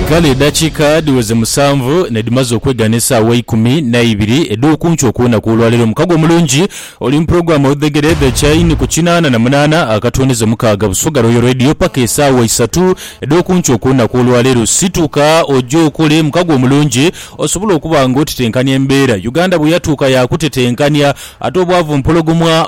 Kale edakiika dhiweze musanvu nedhimaze okwegana esaawa eikumi naibiri edhokunki okulunaku olwaleero. Mukago omulungi oli muprogram Odhegere the chain ku kinaana na munaana akatwonize mukaaga Busoga Royal Radio paka esaawa isatu edhokunki okulunaku olwaleero. Situka oje okole mukago omulungi osobole okuba nga otetenkania embeera Uganda bweyatuuka yakutetenkania ate obwavu mpologoma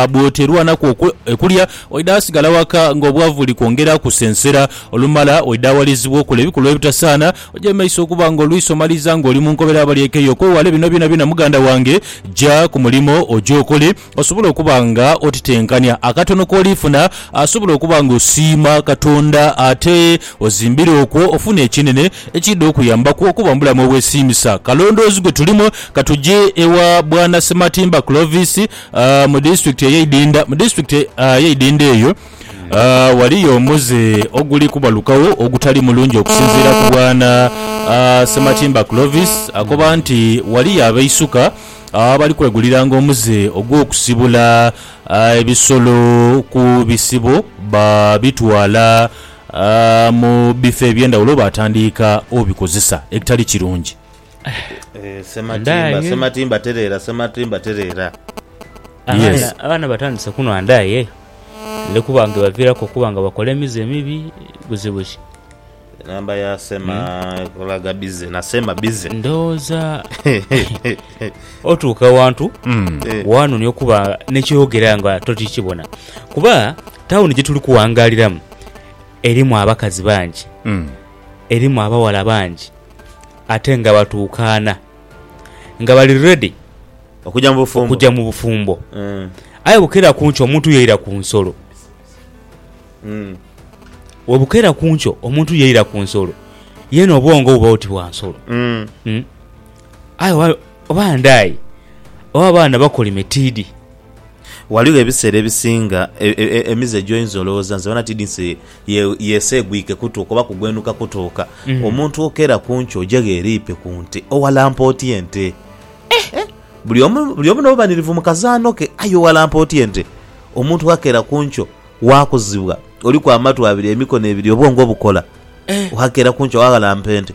bwoterwanaku okulya. Oidha asigala waka nga obwavu buli kwongera kusensera. Olumala oidha awalirizibwa okola ebikolwa ebitasaana. Ojemeisa okuba nga oluisi omaliriza nga oli mu nkobera abali ekeyo. Okwewala bino byonabyona muganda wange, ja ku mulimo oje okole osobole okuba nga otitenkania. Akatono k'oliifuna asobola okuba nga osiima Katonda ate ozimbira okwo ofune ekinene ekiidha okuyambaku okuba mu bulamu obwesiimisa. Kalondoozi gwe tulimu, ka tuje ewa Bwana Ssematimba Clovis Aa, mu disitulikiti ey'eidinda, mu disitulikiti, aa, ey'eidinda eyo, aa, ghaliyo omuze oguli kubalukagho ogutali mulungi okusinziira ku Bwana, aa, Ssematimba Clovis. Akoba nti, Ghaliyo abeisuka abali kweguliranga omuze ogw'okusibula, aa, ebisolo ku bisibo baabitwala, aa, mu bifo eby'endhaghulo baatandiika obikozesa ekitali kirungi. Sematimba, Sematimba tereera, Sematimba tereera. Abaana, abaana batandise kunhwa ndaaye eyo. Eli kuba nga ebaviiraku okuba nga bakola emize emibi buzibu ki. Enamba ya Sema ekolaga bize na Sema bize. Ndowooza otuuka awantu waanonia okuba ne kyoyogera nga tokyikibona. Kuba tawuni gyetuli kuwangaaliramu erimu abakazi bangi, erimu abawala bangi. ate nga batuukaana, nga bali ready okuja mu bufumbo. Aye bukeera ku nkyo omuntu yaira ku nsolo. Webukeera ku nkyo omuntu yaira ku nsolo, yeena obwongo buba oti bwa nsolo. Aye oba, oba ndaaye, oba abaana bakolime tiidhi. Ghaligho ebiseera ebisinga emize gyoinza olowooza nti bona tiidhi nti. Ye, yeeseegwike kutuuka oba kugwenuka kutuuka. Omuntu okeera ku nkyo oja ghe eriipe ku nte, owalampa otya ente? Eh! Eh! Buli omu, buli omu n'obubanirivu mu kazaano ke, aye owalampa otya ente? Omuntu ghakeera ku nkyo waakuzibwa, oliku amatu abiri, emikono ebiri, obwongo obukola, ghakeera ku nkyo waaghalampa ente?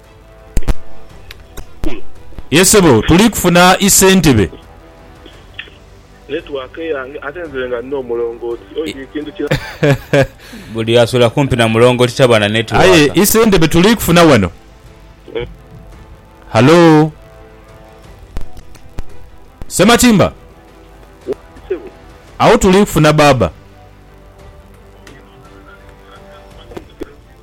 Ye sebo tuli kufuna i sentebe. Network eyange ate nze nga nina omulongooti oyo buli kintu kina. Buli asula kumpi na mulongooti taba na network. Aye i sentebe tuli kufuna wano. Hallo? Ssematimba? Waali sebo. Agho tuli kufuna baaba.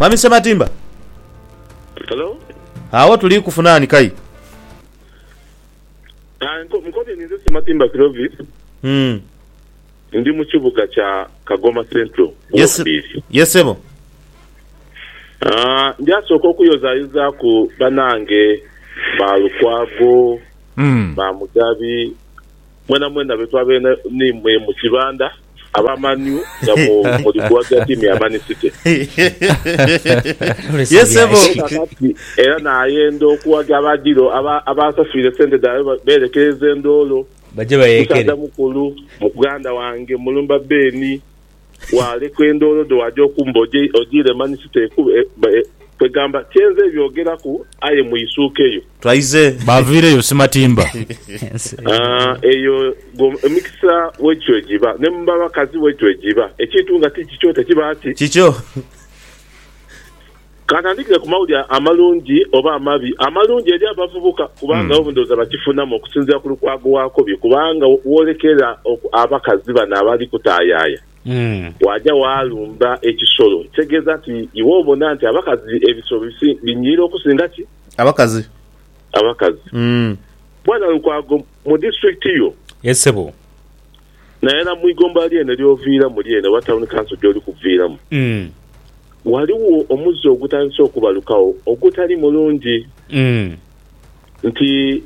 Mwami Sematimba. Hello. Awo tuli kufuna ani kai? Ah, nkobye ninze Sematimba Clovis. Mm. Ndi mu kibuga kya Kagoma Central. Yes, yes sebo. Ah, ndyasooka okuyozayozaaku banange ba Lukwago, mm. ba Mugabi, Mwenamwena be twabaire n'imwe mu kibanda, aba Man U nga muli kuwagira ttiimu ya Man City. Ye sebo. Aye kakati era naayenda okuwagira aba Dilo abansafiire sente dhaibwe beerekereze ndoolo. Baje bayeekere. Musaadha mukulu, muganda wange, mulumba Ben. Waalekwa endoolo dho waaja okumba ojiire mani siteekube. Kwegamba, kye nze byogeraku, aye mwisuukeyo. Twaize. Baaviireyo simatimba. Eyo gwo emikisa bwegityo bwe giba. Ne mu bakazi bwegityo bwe giba. Ekintu nga ti kikyo tekiba ki? Kikyo. Kantandikire ku mawulire amalungi oba amabi. Amalungi eri abavubuka kubanga abo ndhooza bakifunamu okusinziira ku Lukwago Wakobi kubanga woolekera oku abakazi bano abali kutaayaaya waaja waalumba ekisolo ekitegeeza nti iwe obona nti abakazi ebisolo binyiira okusinga ki? Abakazi. Abakazi. Bwana Lukwago, mu disitulikiti yo. Yes ssebo. naera mu igomba lyene ly'oviiramu lyene oba tawuni kanso gy'oli kuviiramu, ghaligho omuze ogutandise okubalukagho ogutali mulungi nti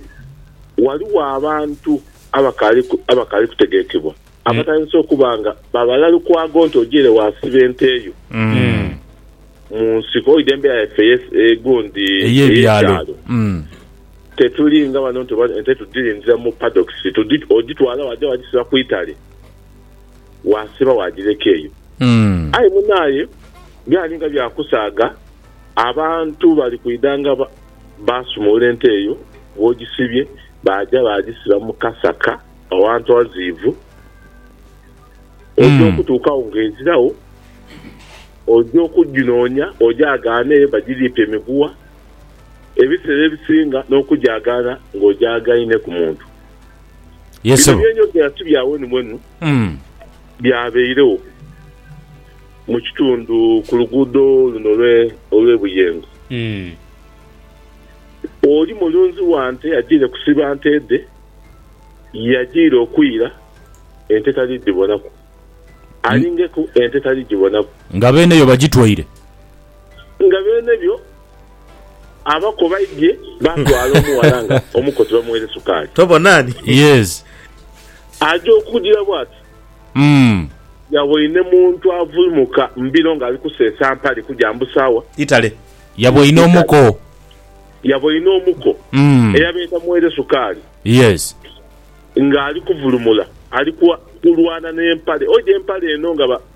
ghaligho abantu abakaali kutegekebwa abatandise okuba nga babala lukwago nti ojaire waasiba ente yo mu nsiko oidha embera yaife egundi ey'ebyalo. Tetuli nga bano nti oba ente tudhilindira mu paddocks, odhitwala waja wajisiba ku itale wasiba wajireka eyo. Aye munaye byali nga bya kusaaga, abantu bali kwidha nga basumulula ente eyo wojisibye baja bajisiba mu kasaka awantu awaziivu, oja okutuukawo nga eziragho, oja okujinonya oja agaane eyo bajiriipye miguwa. ebiseera ebisinga n'okujaagaana ng'ojaagaine ku muntu. Bino bye njogera ti bya wenu mwenu, byabairegho mu kitundu ku luguudo luno olw'e Buyengo. Oli mulunzi wa nte ajaire kusiba nte dhe, yajaire okwira ente tali dhibonaku, alingeku ente tali dhibonaku. Nga beene yo bagitwaire. Nga beene byo, abako baidhie baatwala omughala nga omukozi bamugheere sukaali. Tobona ni? Yes. Aja okujira bw'ati. Mm. Yaboine muntu avuimuka mu biro ng'ali kuseesa mpale kuja mbu sawa. Itale. Yaboine omuko. Yaboine omuko. Mm. Eyabeeta mugheere sukaali. Yes. Ng'ali kuvulumula, ali kulwana n'empale. Oja empale eno nga ba.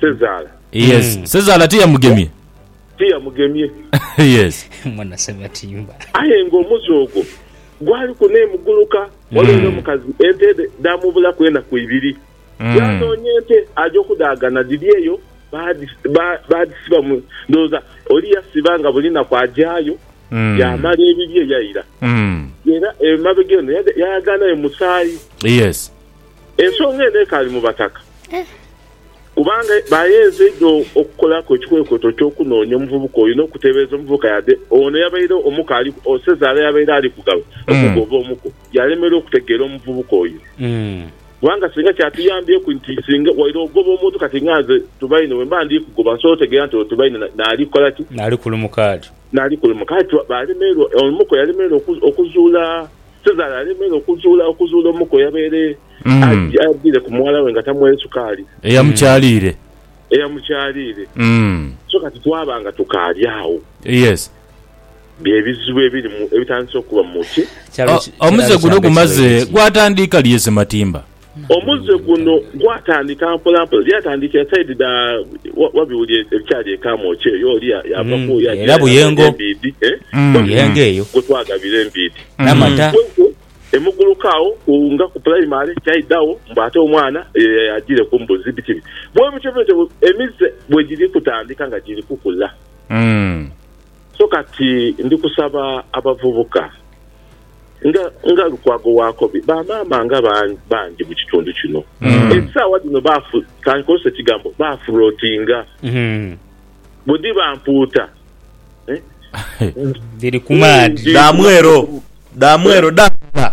Sezaala. Yes. Sezaala tiyamugemye. Tiyamugemye. Yes. Mwana Sebatimba. Aye nga omuze ogwo gwaliku n'emuguluka. Olw'era omukazi ente dhe dhaamubulaku enaku ibiri. Yaanoonya ente aja okudhaagana dhiri eyo baadhisiba mu. Ndowooza oli yasiba nga buli naku ajayo yaamala ebibye yaira. Era emabega eno yayaganhayo musaayi. Yes. Ensonga eno ekaali mu Bataka kubanga baayeenze inho okukolaku ekikwekweto eky'okunoonya omuvubuka oyo n'okuteebereza omuvubuka yade ono eyabaire omuko ali Osezaala yabaire ali kugaba omugo oba omuko yaalemererwa okutegeera omuvubuka oyo kubanga singa kyatuyambyeku nti singa waire ogoba omuntu kati nga nze Tubaine bwe mba ndi kugoba nsobola otegeera nti ono Tubaine naali kukola ki? Naali kulumuka ati. Naali kulumuka ati. Baalemererwa, omuko yalemererwa okuzuula. Cesare alemere okuzuula okuzuula omuko yabaire ajiire ku muwala we nga tamwere sukaali. Eyamukyaliire. Eyamukyaliire. So kati twaba nga tukaali agho. Yes. Bye bizibu ebiri mu, ebitandise okuba mu ki. Omuze guno gumaze gwatandiika lye Sematimba? Omuze guno gwatandika mpolampola. Lyatandikira saidi dha Wabiwuli ebikyali e Kamwokya eyo. Oli yaava ku oyo agira yagabira Embiidhi. Wabiwuli gwe twagabira Embiidhi. Kwenkwe e Muguluka agho ku nga ku pulayimale kyaidhagho mbu ate omwana ye yagiire ku mbuzi. Biki biki. Bwebityo bwebityo emize bwe giri kutandika nga giri kukula. So kati ndi kusaba abavubuka. nga nga Lukwago Wakobi, ba maama nga ban- bangi mu kitundu kino esaawa dhino bafu, kankozese ekigambo bafulootinga Mm. bwe dhiba mpuuta eh, Dhiri ku maadhi. Dha mwero, dha mwero, dha ngala.